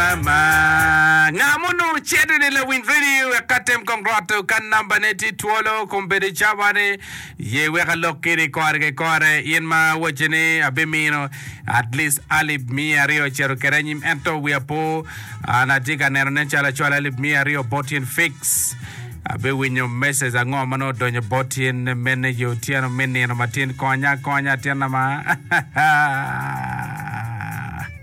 Ama, nga ma onongo cito ni lawiny redio wek ka tem kong roto ka namba ne tye twolo kong bedo cawa ni ye wek alok kini kore ki kore in ma awaci ni abimino at least alip miya aryo acito kede anyim ento wiya po an atye ka neno nen calo acwalo alip miya aryo bot in fix abe winyo message ango ma nongo odonyo bot in mene yo otyeno me nino matin konya konya atinna ma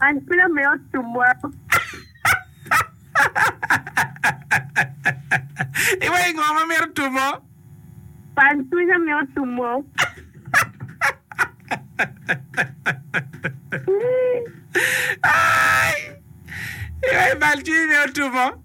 An kwena me ot cumwa. Iwaco ngo ma mito tumo? Pan cwinya me ot cumwa. Iwaco bal cwinyi me ot tumo?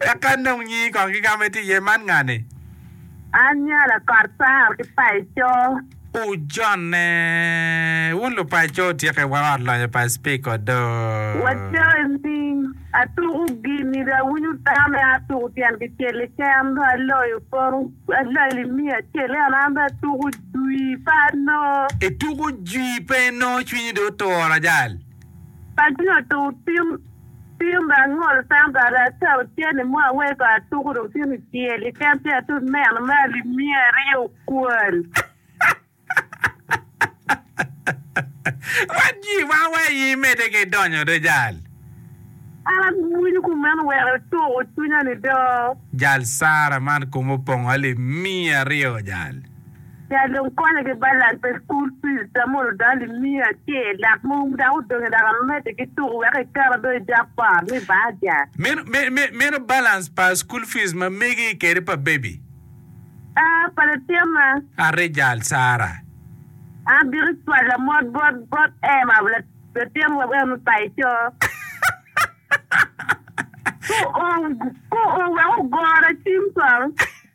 Eka nong nyingi kong ki kama itye iye, man ngani? An nyala kot par ki paco. Ojone. Wun lupaco wutyeke wa ot lonyo pa Speaker odoo. Waco ni, Atuku gini dong awinyo dano me atuku tyen kicel keken dong aloyo poto alali miya acel ento an dong atuku jwi pe anoo. Ituku jwi pe inoo cwinyi dong otur ajal. Paco nyo tuku tim. Pim ma angolo tam bati ata ocenne mo aweyo pa atuku dong tye kicel iken ci atut meno me alimiya aryo okwal. Wat jii ma wa i mede ki donyo do jal. An awinyo ku meno weko ituku cwinya ni do. Jal Sarah man kume opongo alimiya aryo jal. Nya dong konye ki balance pa school fees da mono dano i miyo acel dok mogo dok odonge dok amede ki tuku wek i tera do i japa me baja. Meno me me meno balance pa school fees ma megi kede pa baby. Aa pa latyema. Arejal Sarah. An bito cwala mot bot bot Emma latyem wa wek me bayo coo. Ko o ko o wek ogora cim twal.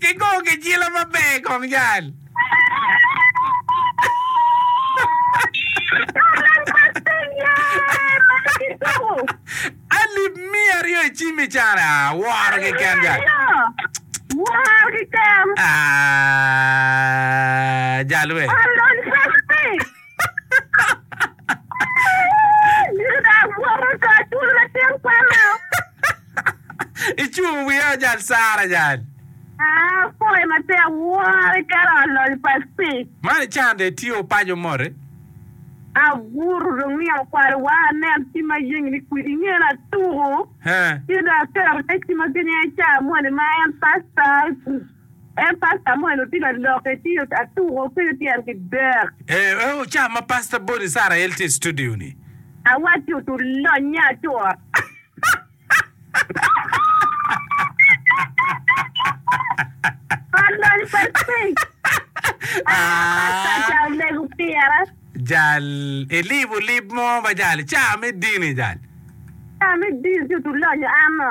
Kigongo gicila maber i kom jal. Alip miya aryo i cim i can. Ah, woro keken jal. Ah, jal we. Icung wiya ajal sara ajal. Apoyo matek woro iketo alol pa stick. Man icande itye opaco mote. Abuto dong ni akwalo wa anen ci ma yengi ni kwidi ingene atuku. Ci dong aketo te ci ma genye ca moni ma en pasta. En Pastor Samuel otino aloke ci atuko ki tyen ki dek. Ee oo ca ma Pastor Boni Isarael tye istudio ni. Awacci otur lonye atura. Tur lony pa stage. Aa Pastor ca omego pira. Jal ilibo lib mo ma jal ca me dini jal. Ca me dini ci otur lonye ano.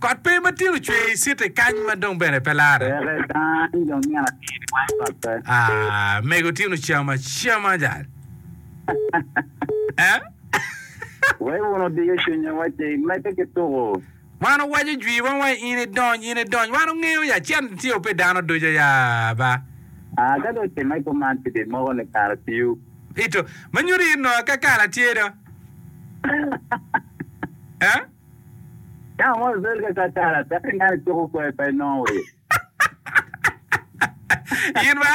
Kot pe ma tino cwer i citi kany ma dong bene pe larre. Peke dang jo nino atir i wang kot pe. Mego tino cam acama jal. Eh? Wek wun odiyo cwinya wa ce imedde ki tuku. Wan owaco jwi wa wai in idony in idony wan ongeyo ya cen tye ope dano ducu ya ba. Ah ka dong timme kuman ci bi moko ni kara piu. Ito. Ma nyuto in nongo akakala tye do. Eh? Dano mo obedo ka kakala peke ni an acuko kwer pa inongo wa ye. In ba?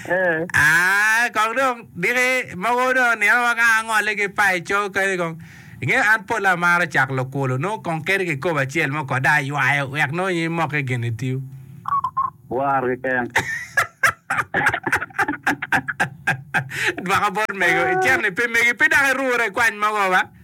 Eh. Ah, kong dong diki mogo dong nino ma ka angole ki pai coo kadi kong. Inge an pol amaro cak lukulo nongo kong keri ki kobo acel mo kode aywayo wek nongo in imoke gin itiu. War keken. Dwaka bot mego, icen ni pe megi pe dok irure kwany mogo ba?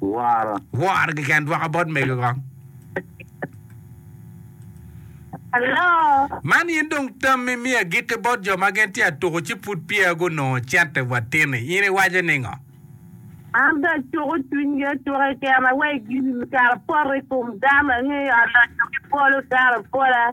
Woro. Woro keken dwoko bot mego kong. Hello. Man in dong tammi mi agitte bot jo ma gin tye atuku ci pud peya gunongo cente wa tini. In iwaco ningo? An be acuku cwinygi acuka i kena wek gin kara poto i kom dano angeyo aloco ki polo dano pola.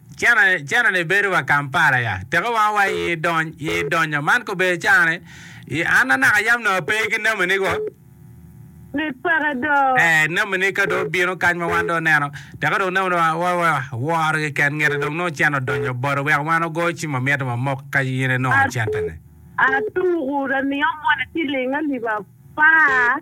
Cene ni bedo wa Kampala ya teko wanga wa i dony i donyo man kobedo cani i an anaka yam nongo ape ki nami ni go Mit peke do. eh nami ni ka dong obino kany ma wan dong oneno teko dong nami ni wa wa wa woro gi ken ngete dong nongo cene odonyo bado wek wan ogo ci ma mito ma mok ka in inongo cente ni. Atuku da miyo moni ciling alip apar.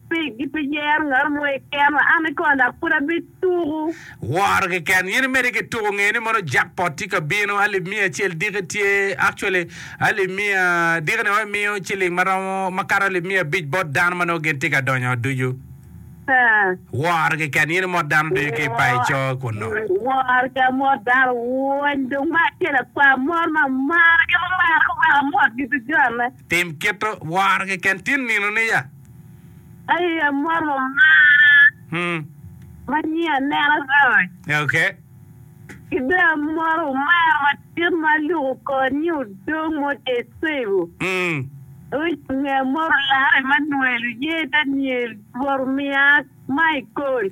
Pi gipiyero ngat mo i keno, an kona pud abituku. Woro keken. In imedi ki tuku nge ni mono jackpot tye ka bino, alip miya acel diki tye, actually alip miya diki ni wai miyo ciling ma romo ma kato alip miya abic bot dano ma nongo gin tye ka donyo ot ducu. Haa. Woro keken. In imot dano ducu ki i payo co kunnu. Woro ki amot dano wony dong me acel akwar mot ma amaro gin ma maro ki weko amot gi ducu anne. Tim kite woro keken tin nino niya. Aye amwoto omara ma nyi aneno roc. Ki dong amwoto omara madit ma aluko kor nyi odong mo tye cego. Roc onge amwoto larre ma nwelo ye Daniel Rwot omiya ma ikol.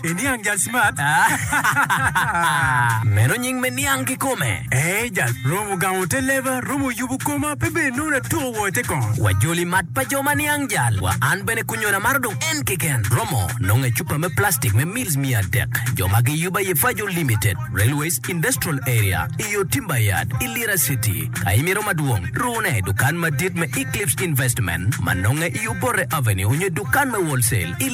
Iniang jal smart aah. Meno nying me niang kikome. Eeh jal romo gamo te leba, romo yubu koma pe bed nongo atuko woo ite kong. Wa joli mat pa jo ma niang jal wa an bene kunyona maro dong en keken romo nongo ecupa me plastic me meals miya adek jo ma gi yuba ye fajo limited railways industrial area iyo timber yard i lira city ka imito madwong rune dukan madit me eclipse investment ma nonge i obote avenue onyo dukan me wholesale i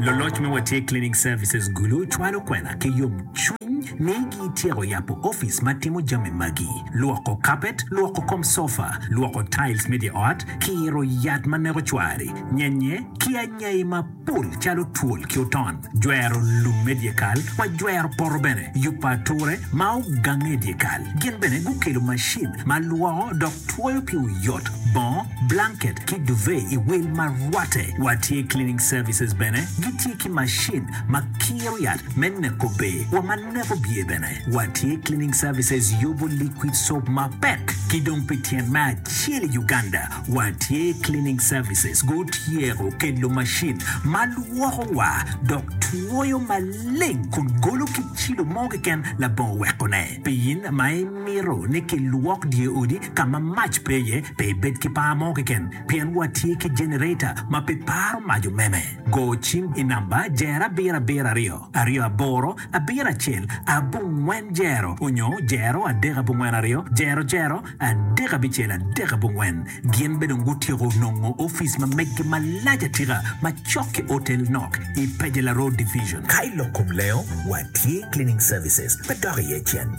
Luloc me Watye Cleaning Services Gulu cwalo kwena ki yomcwiny ni gityeko yabo opic ma timo jami magi, lwoko kapet, lwoko kom sofa, lwoko tiles me dye ot, kiro yat ma neko cwari, nyenye, ki anyai mapol calo twol ki oton, jwero lum me dyekal wa jwero poto bene, yubo ature ma ogange i dyekal. Gin bene gukelo macin ma lwoko dok Twoyo pi oyot, bongo, blanket ki duvet i wil ma rwatte wa tye cleaning services bene gi tye ki macin ma kiro yat me neko ber wa ma neko byer bene wa tye cleaning services yubu liquid soap ma pek ki dong pi tyen me acel i Uganda wa tye cleaning services gu tyeko kelo macin ma lwoko wa dok twoyo maleng kun golo ki cilo mo keken labongo weko ne pi in ma i Amito ni kilwok dyeodi ka ma mac pe iye, pe ibed ki par mo keken, pien watye ki jenereta ma pe paro mac omeme. Go cim i namba jero abiro abiro aryo, aryo aboro, abiro acel, abongwen jero onyo jero adek abongwen aryo, jero jero, adek abicel adek abongwen. Gin be dong gutyeko nongo ofice ma meggi malac atika ma cok ki otel nok i Pejela Road Division. Ka ilok kom lengo, watye cleaning services pe dok iye cen.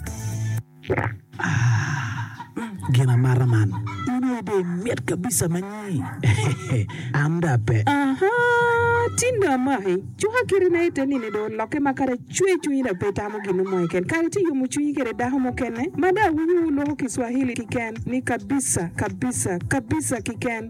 Gin amata man. In aye dong imit kabisa ma nyi. An dong ape. Aha! Tin dong amaki. Cuka kite na ite nini dong olokke ma kara cwer cwinyi dong pe itamo gin mo keken. Kare ci iyomo cwinyi kwede dako mukene ma dong awinyo wuloko Kiswahili kiken ni kabisa, kabisa, kabisa kiken.